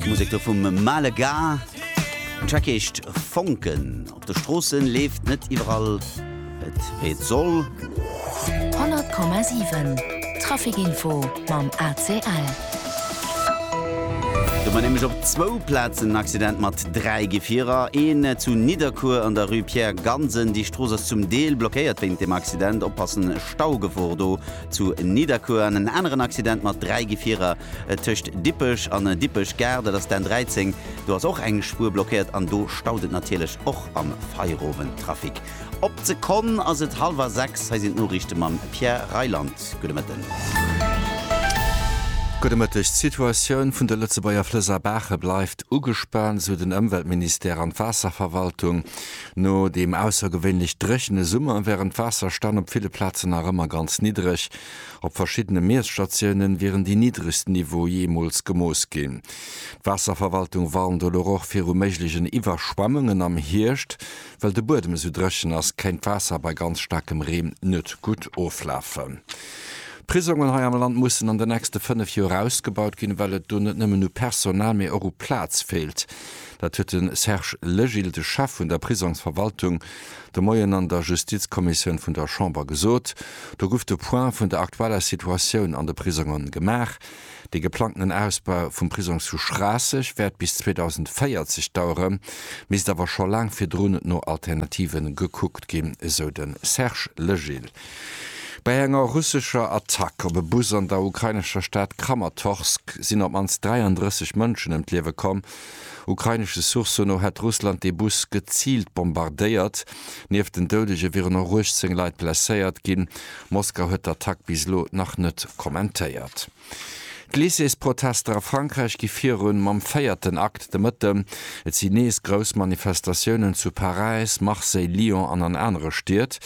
Musek do vum Male Ga. Den Track heescht Fonken. Op de Stroossen leeft net iwwerall et wéi et soll. 100,7 Traficinfo mam ACL. Do war nämlech op zwou Plazen en Accident mat dräi Gefierer. Een zu Nidderkuer an der Rue Pierre Gansen. Déi Strooss ass zum Deel blockéiert wéint dem Accident. Oppassen, Staugefor do. Zu Nidderkuer an en aneren Accident mat dräi Gefierer tëscht Dippech an Dippech Gare, dat ass d'N13. Do ass och eng Spuer blockéiert an do staut et natierlech och am Feierowendtrafic. Op d'Sekonn ass et hallwer sechs. Hei sinn d'Noriichte mam Pierre Reyland. Gudde Mëtten. Gudde Mëtteg. D'Situatioun vun de Lëtzebuerger Flëss a Baache bleift ugespaant, esou den Ëmweltministère an d'Waasserverwaltung. No deem aussergewéinlech dréchene Summer wären d'Waasserstänn op ville Plazen nach ëmmer ganz niddereg. Op verschiddene Miesstatiounen wieren déi niddregsten Niveaue jeemools gemooss ginn. D'Waasserverwaltung warnt elo och viru méiglechen Iwwerschwemmungen am Hierscht. Well de Buedem esou dréchen ass, kéint d'Waasser bei ganz staarkem Reen net gutt oflafen. D'Prisongen hei am Land mussen an den nächste fënnef Joer ausgebaut ginn, well et do net nëmmen u Personal, mee och u Plaz feelt. Dat huet de Serge Legil, de Chef vun der Prisongsverwaltung, de Moien an der Justizkommissioun vun der Chamber gesot. Do guff de Point vun der aktueller Situatioun an de Prisongen gemaach. Dee geplangtenen Ausbau vum Prisong zu Schraasseg wäert bis 2040 dauere, misst awer scho laang virdrun no Alternative gekuckt ginn, esou de Serge Legil. Bei enger russescher Attack op e Bus an der ukrainescher Stad Kramatorsk sinn op d'mannst 33 Mënschen ëm d'Liewe komm. Ukrainesche Sourcë no hätt Russland dee Bus geziilt bombardéiert. Nieft den Doudege wieren och 18 Leit blesséiert ginn. Moskau huet d'Attack bis elo nach net kommentéiert. D'Lycées-Protester a Frankräich gi virun mam véierten Akt de Mëtten. Et sinn nees grouss Manifestatiounen zu Paräis, Marseille, Lyon an an anere Stied.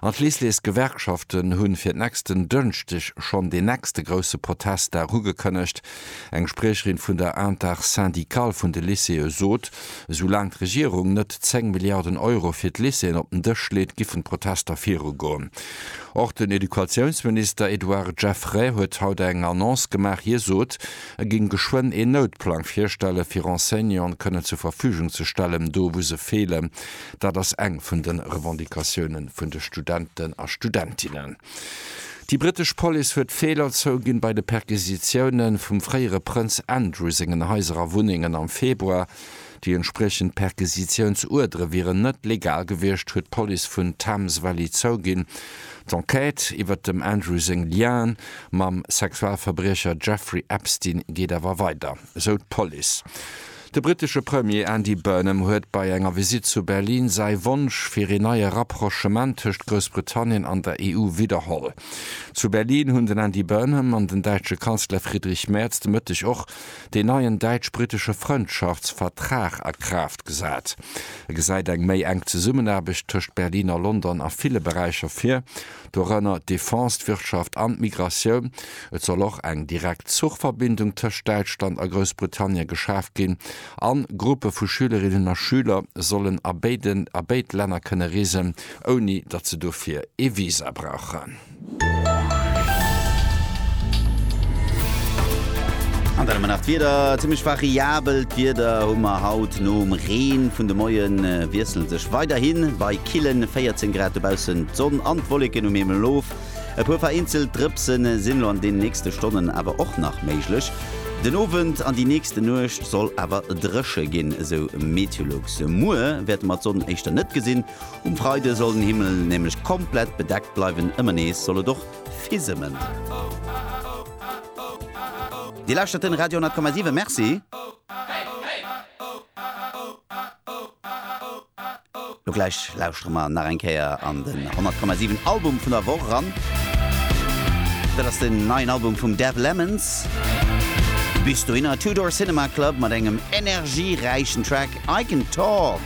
An d'Lycées-Gewerkschaften hunn fir nächsten Dënschdeg schonn deen nächste grousse Protestdag ugekënnegt. Eng Spriecherin vun der Intersyndicale vun de Lycéeë sot, esou laang d'Regierung net 10 Milliarden Euro fir d'Lycéeën op den Dësch leet, giffen d'Protester virugoen. Och den Educatiounsminister Edouard Geffray huet haut eng Annonce gemaach. Hie sot, e géing geschwënn een Noutplang virstellen, fir Enseignanten kënnen zur Verfügung ze stellen, do wou se feelen. Dat ass eng vun de Revendicatioune vun de Studenten a Studentinnen. Déi brittesch Police huet Feeler zouginn bei de Perquisitioune vum fréiere Prënz Andrew sengen Haiser a Wunnengen am Februar. Déi entspriechend Perquisitiounsuerdere wieren net legal gewiescht, huet d'Police vun Thames Valley zouginn. D'Enquête iwwert dem Andrew seng Lienen mam Sexualverbriecher Jeffrey Epstein geet awer weider, esou d'Police. De brittesche Premier Andy Burnham huet bei enger Visitt zu Berlin säi Wonsch fir een neie Rapprochement tëscht Groussbritannien an der EU widderholl. Zu Berlin hunn den Andy Burnham an den däitsche Kanzler Friedrich Merz de Mëtteg och deen neien däitsch-brittesche Frëndschaftsvertrag a Kraaft gesat. E gesäit eng méi enk Zesummenaarbecht tëscht Berlin a London a ville Beräicher vir, dorënner d'Defense, d'Wirtschaft an d'Migratioun. Et soll och eng direkt Zuchverbindung tëscht Däitschland a Groussbritannien geschaf ginn an Gruppe vu Schülerinnen a Schüler sollen a béiden a béid Länner kënne reesen, ouni datt se dofir ee Visa brauchen. An dann hu mer nach d'Wieder, Zimmlech variabelt Wieder hu mer haut, nom Reen vun de Moien wiesselt sech weiderhi bei. killen 14 Grad dobaussen, d'Sonn an d'Wolleken um Himmel of. E puer vereenzelt Drëpse sinn elo an den nächste Stonnen awer och nach méiglech. Den Owend an déi nächste Nuecht soll awer dréche ginn, esou Meteolux. Muer wäerte mer d'Sonn éischter net gesinn, um Freide soll den Himmel nämlech komplett bedeckt bleiwen. Ëmmer nees soll et och fisëmmen. Dir lauschtert den Radio 10,7. Merci. Lo gläich lauschtere mer nach eng Kéier an den 100,7 Album vun der Woch eran. Dat ass den neien Album vum Dev Lemons. Bis dohinner Two Door Cinema Club mat engem energieräichen Track I Can Talk.